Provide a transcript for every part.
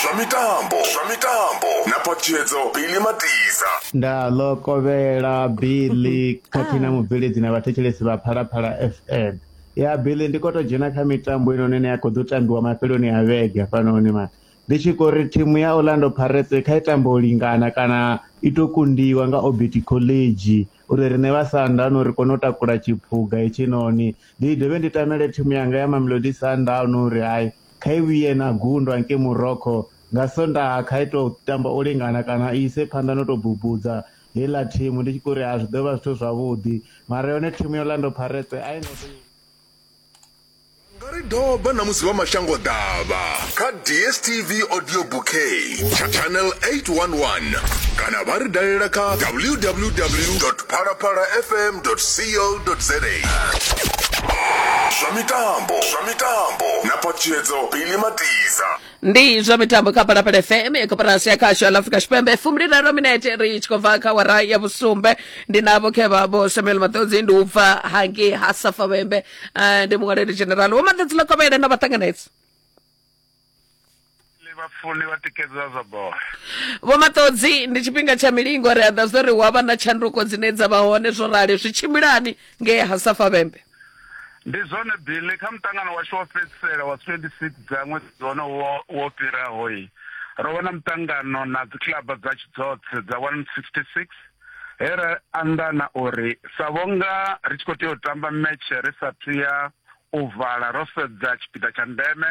zwa mitambo zwa mitambo na phatshedzo bili matiza nda ḽo kovhela billy khathihi na mubveledzi na vhathetshelesi vha phalaphala fm ya billy ndi khou tou dzhena kha mitambo inoni ine ya khou ḓo tambiwa mafheloni a vhege hafhanoni mani ndi tshi khou ri thimu ya orlando pirates kha i tambo u lingana kana i tou kundiwa nga obert college uri riṋe vha Sundowns ri kone u takula tshiphuga hetshinoni. Ndi dovhe ndi tamele thimu yanga ya Mamelodi Sundowns uri hai kha i vhuye na gundwa ngei Morocco nga Sondaha kha i tou tamba u lingana kana i ise phanḓa no tou bubudza heiḽa thimu ndi tshi khou ri ha zwi ḓo vha zwithu zwavhuḓi mara yone thimu ya Orlando Pirates a i ngo tou. Vha nga ri doba na musi vha mashangoḓavha kha DSTV Audio Bouquet, tsha Channel 811 kana vha ri dalela kha www.phalaphalafm.co.za. Zwa mitambo zwa mitambo na phatshedzo Billy Matiza. ndi zwa mitambo kha phalaphala fm ya koporasi ya khasho ya afrika tshipembe fumbiliraru minete ri tshi khou bva kha wara ya vhusumbe ndi navho khe vhavho samuel maṱodzi ndi u bva hangei ha safavhembe Eh, ndi muṅwaleli general vho maḓedzi ḽa kovhele na vhaṱanganedzi Ḽi vhafuli vha tikedza zwa bola. vho maṱodzi ndi tshifhinga tsha milingo ri aḓa zwo ri hu avha na tshanduko dzine dza vha hone zwo rali zwi tshimbilani ngei ha safa vhembe Ndi zwone Billy kha muṱangano washu wa fhedzisela wa 26 dza ṅwedzi wono wo wo fhiraho yi. Ro vha na muṱangano na dzikiḽaba dza tshi dzoṱhe dza 166 he ra anḓana uri sa vhonga ri tshi khou tea u tamba metshe ri sa thu ya u vala ro sedza tshipiḓa tsha ndeme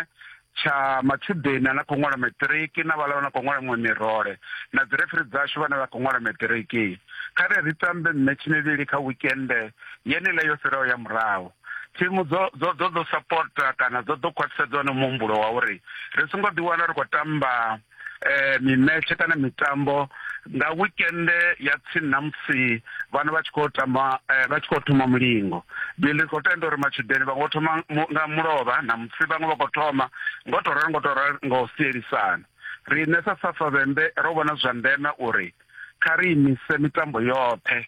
tsha matshudeni ane a khou ṅwala maṱiriki na vhala vhane a khou ṅwala miṅwe mirole na dzi refiri dzashu vhane vha khou ṅwala maṱiriki kha ri ri tambe mmetshi mivhili kha wikende yenile yo fhiraho ya murahu thimu dzo dzo dzo ḓo sapota kana dzo ḓo khwaṱhisedza hone muhumbulo wa uri ri songo ḓiwana ri khou tamba eh, mimetshe kana mitambo nga weekend ya tsini na musi vhana vha tshi khou tamba eh, vha tshi khou thoma mulingo bili khou tenda uri matshudeni vha ngo thoma nga mulovha na musi vhaṅwe vha khou thoma ngo to ralo ngo to ralo nga u sielisana riṋe sa safavhembe ro vhona zwa ndeme uri kha ri imise mitambo yoṱhe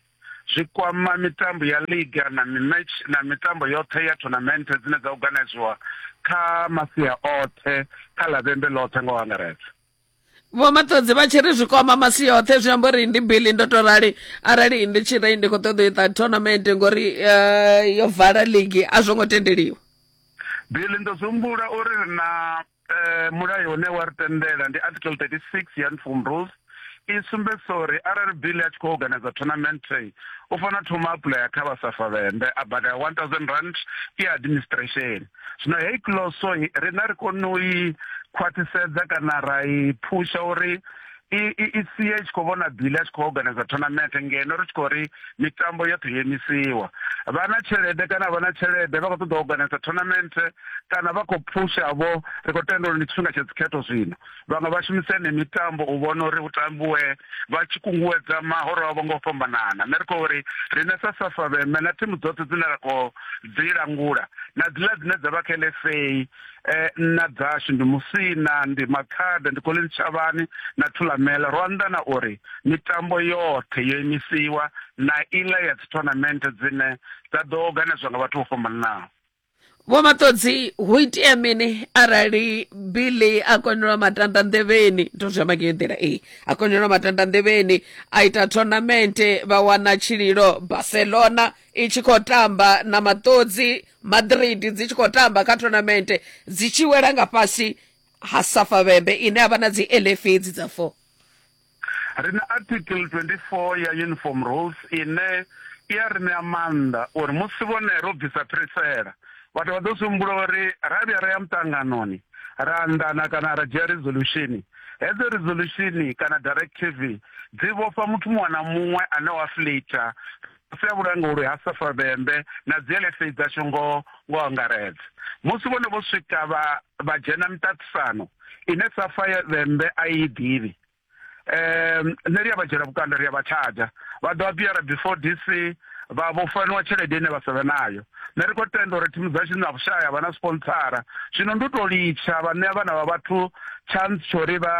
zwi kwama mitambo ya liga na mimatch na mitambo yoṱhe ya tournament dzine dza organiziwa kha masia oṱhe kha lavhembe ḽoṱhe nga u angaredza vho maṱodzi vha tshi ri zwi kwama masi yoṱhe zwi amba uri ndi bili ndo to rali arali ndi tshi ri ndi khou ṱoḓa u ita tournament ngori eh, yo vala ligi a zwo ngo tendeliwa bili ndo zumbula uri na eh, mulayo une wa ri tendela ndi article 36 ya uniform rules i sumbedzisa uri arali bill a tshi khou organiza tournament u fanela thoma apuḽaya kha vha safa vhembe a badela one thousand rand i administration zwino heyi closo rina ri kone u i khwaṱhisedza kana ra i phusha uri i i i sie i tshi khou vhona bili a tshi khou organizer tournament ngeno ri tshi khou ri mitambo yoṱhe yo imisiwa vha na tshelede kana vha na tshelede vha khou ṱoḓa u organizer tournament kana vha khou phusha vho ri khou tenda uri ndi tshifhinga tsha dzikhetho zwino vhaṅwe vha shumisa ene mitambo u vhona uri hu tambiwe vha tshi kunguwedza mahoro avho nga u fhambanana nṋe ri khou uri riṋe sa safa vheme na thimu dzoṱhe dzine ra khou dzi langula na dziḽa dzine dza vha kha lfa eh, nna dzashu ndi musina ndi makhada ndi koleni tshavhani na thulamela ro anḓana uri mitambo yoṱhe yo imisiwa na iḽa ya dzi tournament dzine dza ḓo organizwa nga vhathu vho fhambananaho vho maṱodzi hu itea mini arali billy a konelwa matanda nḓevheni ndo zwi amba ngeyo nḓila ee a konelwa matanda nḓevheni a ita tournament vha wana tshililo barcelona i tshi khou tamba na maṱodzi madrid dzi tshi khou tamba kha tournament dzi tshi wela nga fhasi ha safa vhembe ine a vha na dzi elf edzi dza four ri na article 24 ya uniform rules ine i ya ri ṋea maanḓa uri musi vhone ro bvisa phirisela vhathu vha ḓo zwi humbula uri ra vhuya ra ya muṱanganoni ra anḓana kana ra dzhia resolution hedzo resolution kana directive dzi vhofha muthu muṅwe na muṅwe ane wa flater fhasi ha vhulanguli ha Safa Vhembe na dziLFA dzashu ngo ngo angaredza. Musi vhone vho swika vha vha dzhena miṱaṱisano ine Safa Vhembe a i ḓivhi. Um nṋe ri a vha dzhiela vhukando ri a vha tshadzha vha ḓo a biyara before DC vha vho faniwa tshelede ine vha sa vhe nayo. nṋe ri khou tenda uri thimu dzashu na vhushaya vha na sponsara zwino ndi u tou litsha vha ṋea vhana vha vhathu tshantsi tsho uri vha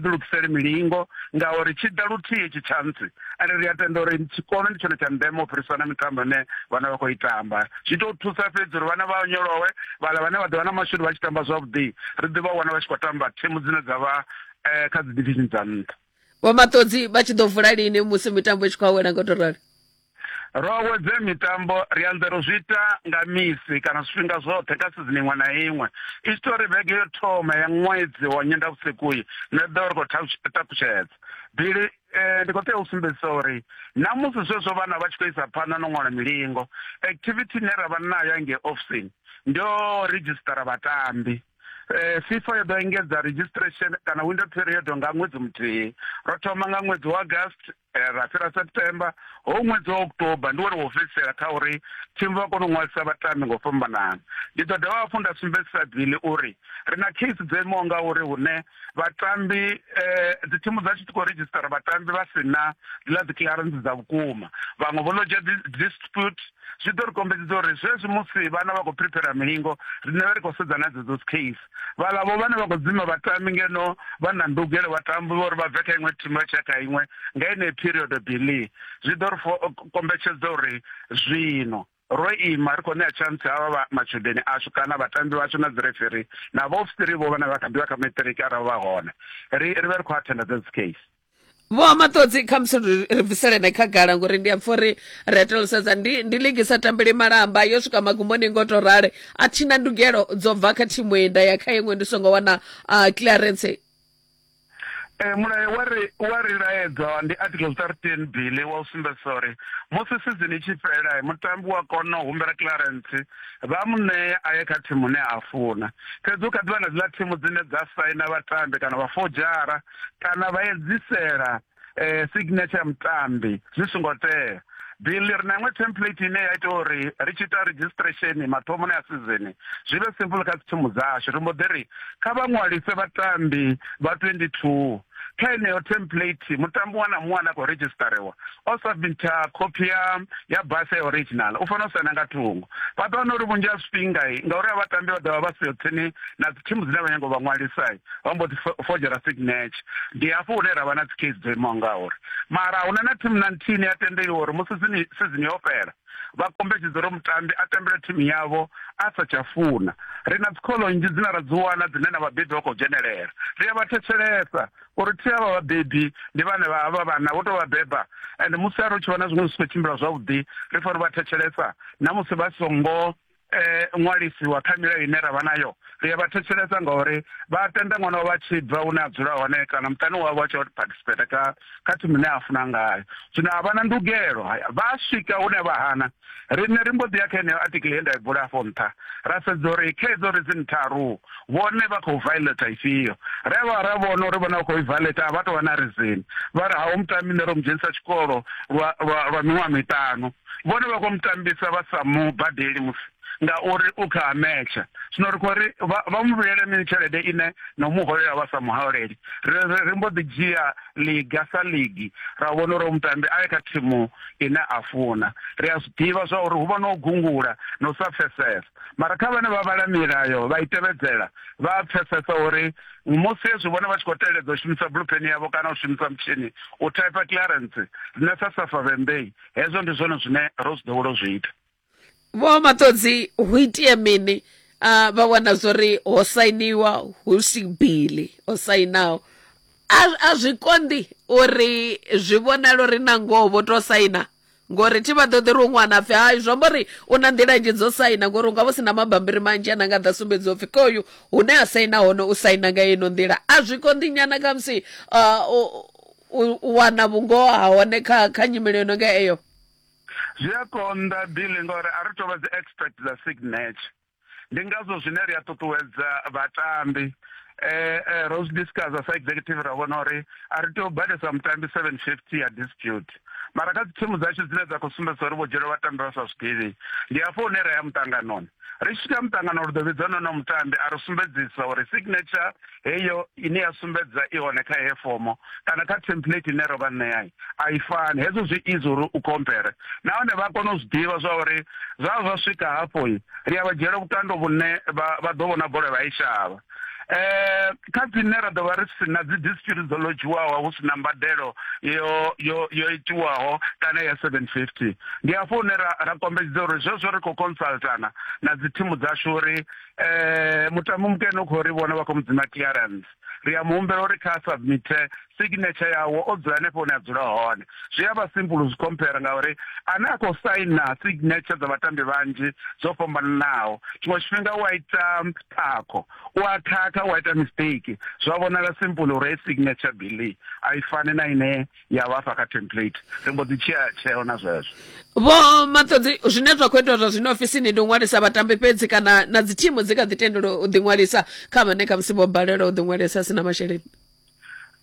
ḓilugisele milingo ngauri tshi ḓa luthihi tshi tshantsi ende ri a tenda uri tshikolo ndi tshone tsha ndeme u fhirisa na mitambo ine vhana vha khou i tamba zwi tou thusa fhedzi uri vhana vha onyolowe vhala vhane vha ḓovha na mashudu vha tshi tamba zwavhuḓi ri ḓi vha wana vha tshi khou tamba thimu dzine dza vha eh, kha dzi division dza nṱha vho maṱodzi vha tshi ḓo vula lini musi mitambo i tshi khou awela nga u to rali ro awedze mitambo ri anzela u zwi ita nga misi kana zwifhinga zwoṱhe kha sizini iṅwe na iṅwe i tshi tou ri vhege yo thoma ya ṅwedzi wa nyendavhusiku-i nṋe ḓo ri khou takutshedza bili eh, ndi khou tea u sumbedzisa uri na musi zwezwo vhana vha tshi khou isa phanḓa no ṅwala milingo activity ine ra vha nayo nge ofisini ndo redzhisitara vhatambi Eh, fifa yo ḓo engedza registration kana window period nga ṅwedzi muthihi ro thoma nga ṅwedzi wa august eh, ra fhira september ho ṅwedzi wa october ndi wone wo fhedzisela kha uri thimu vha kone u ṅwalisa vhatambi ngo fhambanana ndi ḓo dovha hafhu nda sumbedzisa bili uri ri na case dzo imaho nga uri hune vhatambi eh, dzi thimu dza tshi khou redzhisitara vhatambi vha si na ḽa dzi clearance dza vhukuma vhaṅwe vho lodza dispute zwi ḓo ri kombedzisa uri zwezwi musi vhana vha khou prepara milingo riṋe vha ri khou sedza na dzedzo case vhaḽavho vhane vha khou dzima vhatambi ngeno vha na ndugelo vhatambi vha uri vha bve kha iṅwe thimu vha tshia kha iṅwe nga ine period bili zwi ḓo ri kombetshedza uri zwino ro ima ri khou ṋea chance havha vha matshudeni ashu kana vhatambi vhashu na dzi referee na vhaofisiri vho vhane vha kha ḓivha kha maṱiriki arali vha hone ri ri vhe ri khou athenda dza dzi case vho maṱodzi kha musi ri bviselene khagala ngori ndi a pfha uri ri etelosedza ndi ndi ligi sa tambeli malamba yo swika magumboni ngo to rale a thina ndugelo dzo bva kha thimu enda ya kha iṅwe ndi songo wana uh, clearance Eh, mulayo wa ri wa ri laedza ndi article 13 bili wa u sumbedzisa uri musi sizini tshi fhela mutambi wa kona u humbela clearance vha mu ṋea a ye kha thimu ne a funa fhedzi u kha ḓivha na dziḽa thimu dzine dza saina vhatambi kana vha fojara kana vha edzisela eh, signature ya mutambi zwi songo tea bill ri na iṅwe template ine ya ita uri ri tshi ita registration mathomoni a sizini zwi vhe simple kha dzithimu dzashu ri mbo ḓi ri kha vha ṅwalise vhatambi vha 22 kha heneyo template mutambi wa na muṅwe ane a khou registariwa o submitha copy ya ya basa ya original u fanela u saina nga thungo vha ḓo wana uri vhunzhi ha zwifhingai ngauri a vhatambi vha ḓovha vha siho tsini na dzithimu dzine vha nyango vha ṅwalisai vha mbo ḓi fojera signature ndi hafho hune ra vha na dzi case dzo imaho ngauri mara huna na thimu na nthihi ni a tendeliwa uri musi sizini yo fhela vha kombetshedza uri mutambi a tambele thimu yavho a sa tsha funa ri na dzikholo nnzhi dzine ra dzi wana dzine na vhabebi vha khou dzhenelela ri a vha thetshelesa uri thi avha vhabebi ndi vhane vha vha vhana vho tou vha beba and musi a ri u tshi vhona zwiṅwe zwi si khou tshimbila zwavhuḓi ri fanela u vha thetshelesa na musi vha songo eh, ṅwalisiwa kha milayo ine ra vha nayo ri a vha thetshelesa ngauri vha tenda ṅwana wavho a tshi bva hune a dzula hone kana muṱani wavho a tshi participate ka kha thimu ine a funa ngayo zwino a vha na ndugelo vha swika hune vha hana riṋe ri mbo ḓi ya kha heneyo article ye nda i bula afho nṱha ra sedza uri khedzo ri dzi ntharu vhone vha khou violata ifhio ri a vha ra vhona uri vhone vha khou i violata a vha tou vha na reason vha ri ha u muṱa mine ro mu dzhenisa tshikolo lwa miṅwaha miṱanu vhone vha khou mutambisa vha sa mu badeli musi ngauri u kha ametsha zwino ri khou ri vha mu vhuyele mini tshelede ine na u mu holela vha sa muholeli ri mbo ḓi dzhia liga sa ligi ra vhona uri mutambi a ye kha thimu ine a funa ri a zwi ḓivha zwa uri hu vha no gungula na u sa pfesesa mara kha vhane vha vhala milayo vha i tevhedzela vha a pfesesa uri musi hezwi vhone vha tshi khou teledza u shumisa bluepen yavho kana u shumisa mutshini u type clearance rine sa safa vhembei hezwo ndi zwone zwine ro zwi ḓowela zwi ita vho maṱodzi hu itie mini uh, vha wana zwori ho sainiwa hu si bili o sainaho a zwi konḓi uri zwi vhonala uri na ngoho vho to saina ngori thi vha ṱoḓi ri u ṅwana pfhi hai zwi amba uri u na nḓila nnzhi dzo saina ngori u nga vho si na mabambiri manzhi ana nga ḓa sumbedziwa pfhi kha uyu hune a saina hone u saina nga ino nḓila a zwi konḓi nyana khamusi uh, u wana vhungoho ha hone kha kha nyimele yo no nga eyo zwi a konḓa bile ngauri a ri tou vha dzi expert dza signature ndi ngazwo zwine ri a ṱuṱuwedza vhatambi eh, eh, ro zwi discussa sa executive ra vhona uri a ri tea u badesa mutambi seven fifty ya dispute mara kha dzithimu dzashu dzine dza khou sumbedza uri vho dzhiela vhatambi vha sa zwiḓivhi ndi hafho hune ra ya muṱanganoni ri tshi swika muṱangano ri ḓo vhidza nono mutambi a ri sumbedzisa uri signature heyo ine ya sumbedza i hone kha heyo fomo kana kha template ine ro vha ṋeai a i fani hezwo zwi izi uri u compare nahone vha kone u zwi ḓivha zwa uri zwa zwa swika hafho i ri a vha dzhiela vhukando vhune vha ḓo vhona bola vha i shavha eh kha dzine ra ḓovha ri si na dzi dispute dzo lodzhiwaho hu si na mbadelo yo yo yo itiwaho kana ya 750 ndi afho hune ra ra kombetshedza uri zwezwo ri khou consultana na dzi thimu dzashu uri eh mutambo mukene u khou ri vhona vha khou mudzima clearance ri a muhumbela uri kha submite signature yawo o dzula hanefho hune a dzula hone zwi a vha simple zwi compare ngauri ane a khou saina signature dza vhatambi vhanzhi dzo fhambananaho tshiṅwe tshifhinga u a ita khakho u a khakha u a ita mistake zwa vhonala simple uri signature billy a i fani na ine ya vhafha kha template ri mbo ḓi tshea tsheo na zwezwo vho maṱodzi zwine zwa khou itwa zwa zwino ofisini ndi u ṅwalisa vhatambi fhedzi kana na dzi thimu dzi kha ḓi tendela u ḓiṅwalisa kha vhane khamusi vho balelwa u ḓiṅwalisa a si na masheleni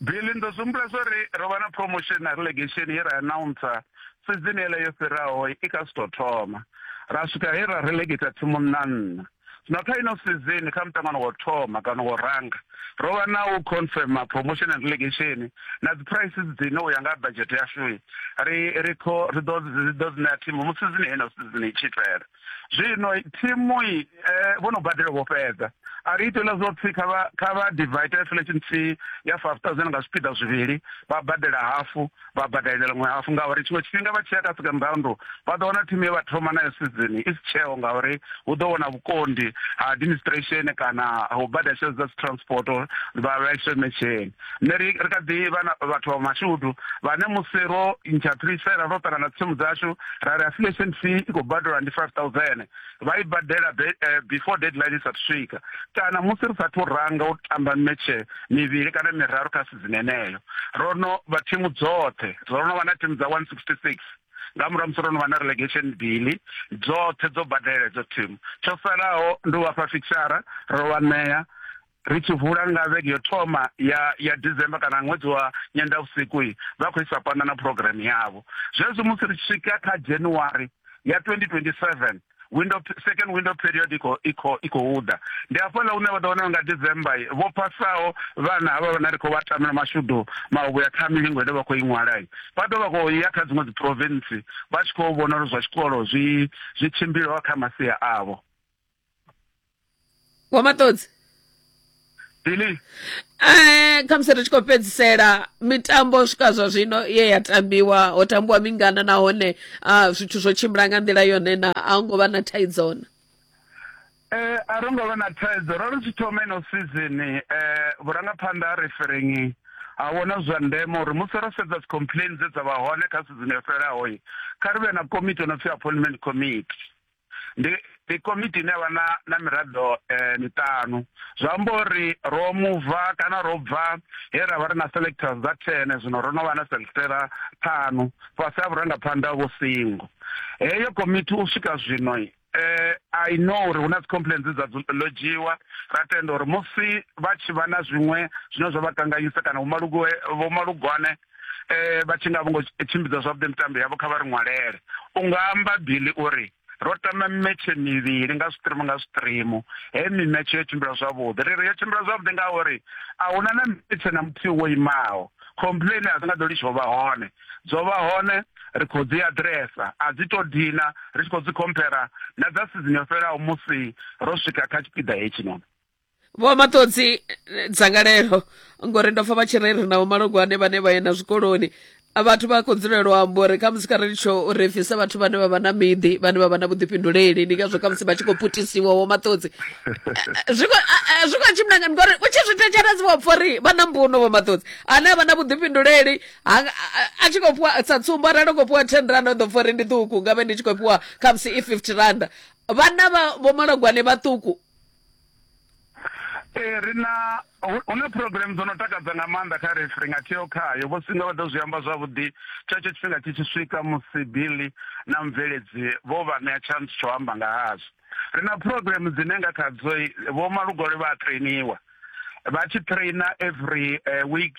bili ndo zumbula zwo ri ro vha na promotion na relegation ye ra announcer sizini ele yo fhiraho i kha si tou thoma ra swika he ra relegata thimu nna nna Zwino kha ino sizini kha muṱangano wa u thoma kana wa u ranga, ro vha na u confirma promotion and relegation na dzi price dzine u ya nga budget yashu ri ri kho ri ḓo ri ḓo dzi ṋea thimu musi sizini heyi na sizini i tshi fhela. Zwino thimu i eh, vho no badela vho fhedza a ri itela zwo pfhi kha vha kha vha divide inflation fee ya 5000 nga zwipiḓa zwivhili vha badela hafu vha badalelwa ṅwe hafu ngauri tshiṅwe tshifhinga vha tshi ya kha second round vha ḓo wana thimu ye vha thoma nayo sizini i si tsheo ngauri hu ḓo wana vhukondi ha administration kana ho badela tshelede dza dzi transport vha vhaiswe metsheni nṋe ri ri kha ḓi vha vhathu vha mashudu vhane musi ro ntsha phirisela ro ṱangana tsimu dzashu ra ri affiliation fee i khou badelwa ndi five thousand vha i badela eh, before deadline i sathu swika kana musi ri sathu ranga u tamba metshe mivhili kana miraru kha dzineneyo ro no vha thimu dzoṱhe ro no vha na thimu dza 166 nga murahu musi ro no vha na relegation bili dzoṱhe dzo badela edzo thimu tsho salaho ndi u vhafha fixara ro vha ṋea ri tshi vula nga vhege yo thoma ya ya December kana ṅwedzi wa nyendavhusiku vha khou isa phanḓa na program yavho zwezwi musi ri swika kha January ya 2027 window second window period ikho ikho ikho uda ndi afho la une vha ḓo wana nga December vho pasaho vhana havha vhana ri khou vha tamela mashudu mahubu ya ṱhami lingo ine vha khou iṅwala vha ḓo vha khou ya kha dziṅwe dzi province vha tshi khou vhona uri zwa tshikolo zwi zwi tshimbilaho kha masia avho wa maṱodzi Billy, Eh, khamusi ri tshi khou fhedzisela mitambo u swika zwa zwino ye ya tambiwa ho tambiwa mingana nahone ah, zwithu zwo tshimbila nga nḓila yone na a hu ngo vha na thaidzo na eh a ro ngo vha na thaidzo ro ri tshi thoma ino season eh vhurangaphanḓa ha referengi ha vhona zwa ndeme uri musi ro sedza dzi complain dze dza vha hone kha season yo fhelaho kha ri vhe na komiti ono pfi appointment committee ndi ndi komiti ine vha na na miraḓo eh, miṱanu zwa amba uri ro muva kana ro bva he ra vha ri na selectors dza thene zwino ro no vha na selectera ṱhanu fhasi ha vhurangaphanḓa vho singo heyo komiti u swika zwino eh i know uri huna complaints dza logiwa ra tenda uri musi vha tshi vha na zwiṅwe zwine zwa vha kanganyisa kana vhomalugwe vhomalugwane eh vha tshi nga vho ngo tshimbidza zwavhuḓi mitambo yavho kha vha ri ṅwalele u nga amba bili uri ro tama mimetshe mivhili nga zwiṱirimu nga zwiṱirimu he mimetshe yo tshimbila zwavhuḓi ri ri yo tshimbila zwavhuḓi ngauri a huna na mimetshe na muthihi wo imaho complain a dzi nga ḓo litsho vha hone dzo vha hone ri khou dzi adresa a dzi to dina ri tshi khou dzi compara na dza sizini yo fhelelaho musi ro swika kha tshipiḓa hetshi noni vho maṱodzi eh, dzangalelo ngori ndo pfa vha tshi reri na vhomalogwane vhane vha yenda zwikoloni vhathu vha khou dzulela u amba uri khamusi kha ri tsho uri bvisa vhathu vhane vha vha na miḓi vhane vha vha na vhuḓifhinduleli ndi ngazwo khamusi vha tshi khou putisiwa wo maṱodzi zwi khou tshimbilangani ngori u tshi zwi thetshelesi vho pfa uri vha na mbuno vho maṱodzi ane a vha na vhuḓifhinduleli a tshi khou fhiwa sa tsumbo arali u khou fhiwa ten randa u ḓo pfa uri ndi ṱuku nga vhe ndi tshi khou fhiwa khamusi i fifty randa vhana vha vhomalogwane vhaṱuku ee ri na hu na program dzo no takadza nga maanḓa kha refi ri nga theo khayo vho singa vha ḓo zwi amba zwavhuḓi tshetsho tshifhinga tshi tshi swika musi bili na mubveledzi vho vha ṋea chance tsho amba nga hazwo ri na program dzine nga khadzo vho malugole vha a trainiwa vha tshi traina every uh, week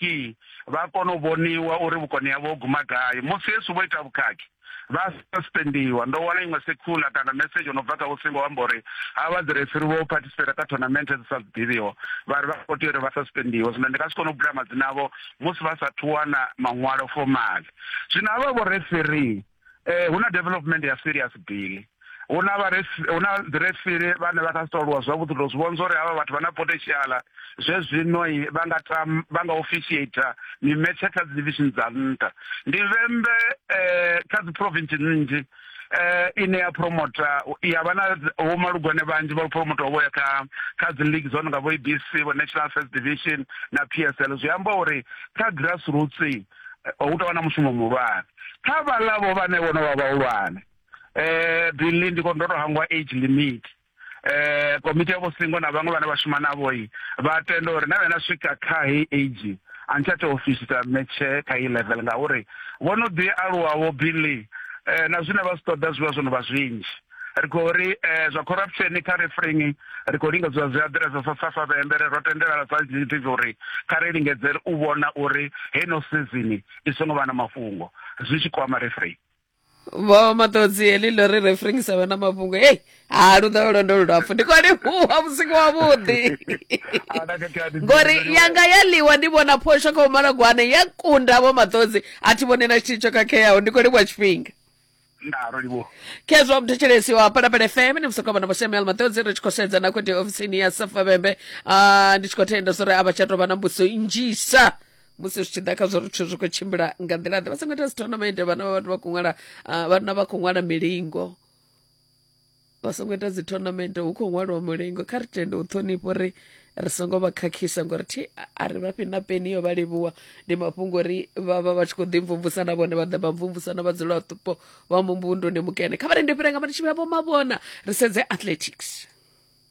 vha kona u vhoniwa uri vhukoni havho ho guma gai musi yesu vho ita vhukhakhi vha suspendiwa ndo wana iṅwe secular kana message ono bva kha vhosingo amba uri ha vha ḓirefiri vho participate kha tournament dzi sa ḓivhiho vha ri vha khou tea uri vha suspendiwe zwino ndi nga si kone u bula madzina avho musi vha sa thu wana maṅwalo formal zwino havha vho referee eh hu na development ya serious bili hu na hu na ḓirefili vhane vha kha si toluwa zwavhuḓi to zwi vhonza uri havha vhathu vha na potentiala zwe zwino vha nga tam vha nga officiator mimetshe kha dzi division dza nṱha ndi vhembe um kha dzi province nnzhi eh ine ya promota ya vha na vho malugwane vhanzhi vha promota vho ya kha kha dzi league dzo no nga vho ABC vho National First Division na PSL zwi amba uri kha grassroots eh, hu tou vha na mushumo muhulwane kha vhalavo vhane vho no vha vhahulwane eh billy ndi khou ndo to hangwa age limit eh komiti ya vhosingo na vhaṅwe vhane vha shuma navho i vha tenda uri na vhena swika kha heyi age a ni tsha tea u fisita metshe kha iyi level ngauri vho no ḓi aluwa vho billy eh na zwine vha zwi ṱoḓa zwi vha zwo no vha zwinzhi ri khou ri eh zwa corruption kha refreng ri khou lingedza zwi aḓiresa sa safa vhembe ri ro tendelana sa gdp uri kha ri lingedze u vhona uri heno sizini i songo vha na mafhungo zwi tshi kwama refreng vho maṱodzi heḽi ḽo ri referring sa vhana mafhungo hei ha lu ḓo lwendo lulapfu ndi khou livhuwa vhusiku wavhuḓi ngori yanga ya ḽiwa ndi vhona phosho kha umalagwane ya kunda vho maṱodzi a thi vhone na tshithihi tsho khakheaho ndi khou livhuwa tshifhinga khezwo mthetshelesi wa palapala fm ni musokomana vho samuel maṱodzi ri tshi khou sedza na khothe ofisini ya safavhembe ah, ndi tshi khou thenda zwo ri a vha tsha tou vha na mbuso nnzhisa musi zwi tshi ḓa kha zwo ri zwithu zwi khou tshimbila nga nḓila ḓe vha songo ita dzithonamente vhana vha vhathu vha khou ṅwala ah, vhana vha khou ṅwala milingo vha songo ita dzithonamente hu khou ṅwaliwa mulingo kha ri tende u ṱhonifha uri ri songo vha khakhisa ngori thi a ri vha fhi na peni yo vha livhuwa ndi mafhungo uri vha vha vha tshi khou ḓi mvumvusa na vhone vha ḓa vha mvumvusa na vhadzulapo vha mumbunduni mukene kha vha rende fhira nga mari tshivhila vho mavhona ri sedze athletics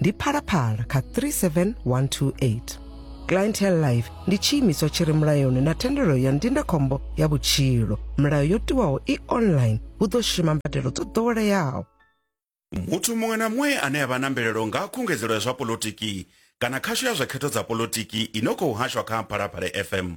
ndi phalaphala kha 37128 clientele life ndi tshiimiswa tshi re mulayoni na thendelo ya ndindakhombo ya vhutshilo milayo yo tiwaho i online hu ḓo shuma mbadelo dzo ḓoweleaho muthu muṅwe na muṅwe ane a vha na mvelelo nga khungedzelo ya zwa polotiki kana khasho ya zwa khetho dza polotiki i no khou hashwa kha phalaphala fm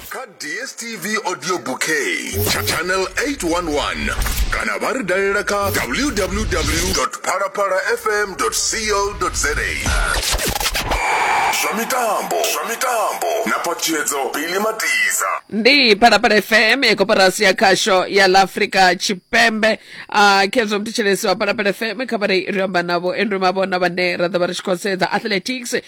kha dstv audio bouquet cha channel 811 kana vha ri dalela kha www phalaphala fm co za zwa mitambo zwa mitambo na patshedzo bili matiza ndi phalaphala fm ya koporasi ya khasho ya la afrika tshipembe a khezwo mthetshelesi wa phalaphala fm kha vha ri amba navho andrew mavhona vhane ra ḓo vha ri tshi khou sedza athletics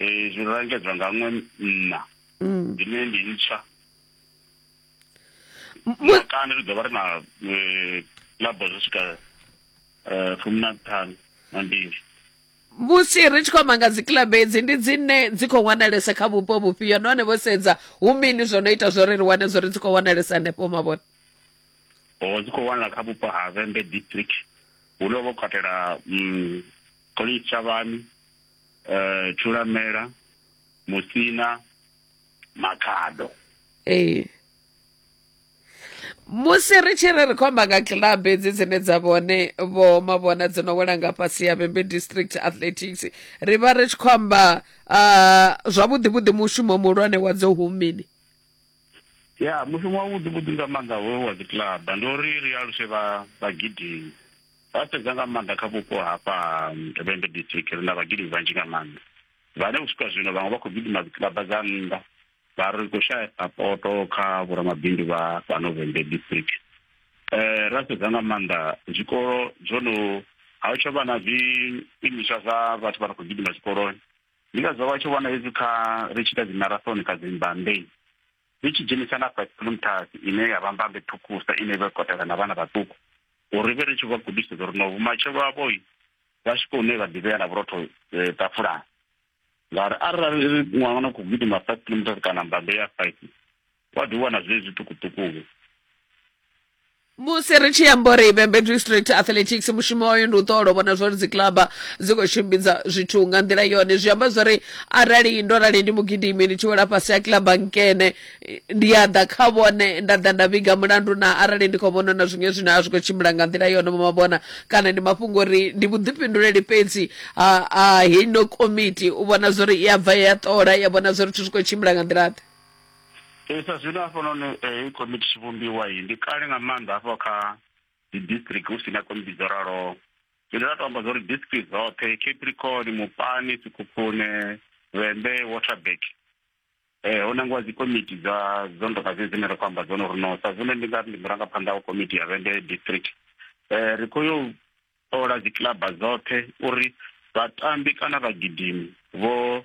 ee zwi langedzwa nga ṅwe mma mm. ine ndi ntswa makanda ri ḓo vha ri na eh, labo zwi swika eh, fumi na ṱhanu na mbili musi ri tshi khou amba nga dzikilabu edzi ndi dzine dzi khou wanalesa kha vhupo vhufhio nahone vho sedza hu mini zwo no ita zwori ri wane zwo ri dzi khou wanalesa hanefho mavhona o oh, dzi khou wanala kha vhupo ha vembe district hu no vho katela mm, college tshavhani eh Thulamela Musina Makhado ee musi ri tshi ri ri khou amba nga club hedzi dzine dza vhone vho mavhona dzi no wela nga fhasi ya vhembe district athletics ri vha ri tshi khou amba ah, zwavhuḓi vhuḓi mushumo muhulwane wa dzo humini ya mushumo wa vhuḓi vhuḓi nga maanḓa hoyo wa dzi club ndi uri ri aluse vha vhagidimi Vha sedza nga maanḓa kha vhupo hafha ha Vhembe District ri na vhagidi vhanzhi nga maanḓa vhane u swika zwino vhaṅwe vha khou gidima dzikiḽaba dza nnḓa vha ri khou shaya sapoto kha vhoramabindu vha fhano Vhembe District. Eh, ra sedza nga maanḓa zwikolo zwo no ha u tsha vha na zwiimiswa zwa vhathu vha no khou gidima zwikoloni ndi ngazwo vha tshi wana hezwi kha ri tshi ita dzi marathon kha dzi mbandei zwi tshi dzhenisa na fhatimuntasi ine ya vha mbambe ṱhukusa ine vha kotela na vhana vhaṱuku uri vhe ri tshi vha gudisa uri no vhumatshelo havho vha swike hune vha ḓivhea na vhurotho eh, tafulani ngauri arali ṅwana no khou gidima five kilometers kana mbambe ya five wa ḓi wana zwee zwiṱukuṱukuwe musi ri tshi amba uri vhembe district athletics mushumo wayo ndi u ṱola u vhona zwori dzikilaba dzi khou tshimbidza zwithu nga nḓila yone zwi amba zwori arali ndo rali ndi mugidimi ndi tshi wela fhasi ha kilaba nkene ndi a ḓa kha vhone nda ḓa nda vhiga mulandu na arali ndi khou vhona na zwiṅwe zwine a zwi khou tshimbila nga nḓila yone mavhona kana ndi mafhungo uri ndi vhuḓifhinduleli fhedzi ha ha heino komiti u vhona zwori i a bva ya ṱola ya vhona zwori zwithu zwi khou tshimbila nga nḓila ḓe Ee, sa zwino hafhanoni heyi komiti tshi vhumbiwa iyi ndi kale nga maanḓa hafho kha dzi district hu si na komiti dzo raloho zwine ra to amba zwa uri district dzoṱhe capricorn mupani sikhukhune vhembe waterback eh ho nangiwa dzi komiti dza dzo ndoka dze dzine ri khou amba dzone uri no sa zwino ndi nga ri ndi murangaphanḓa wa komiti ya vhembe district eh ri khou yo ṱola dzi kilaba dzoṱhe uri vhatambi kana vhagidimi vho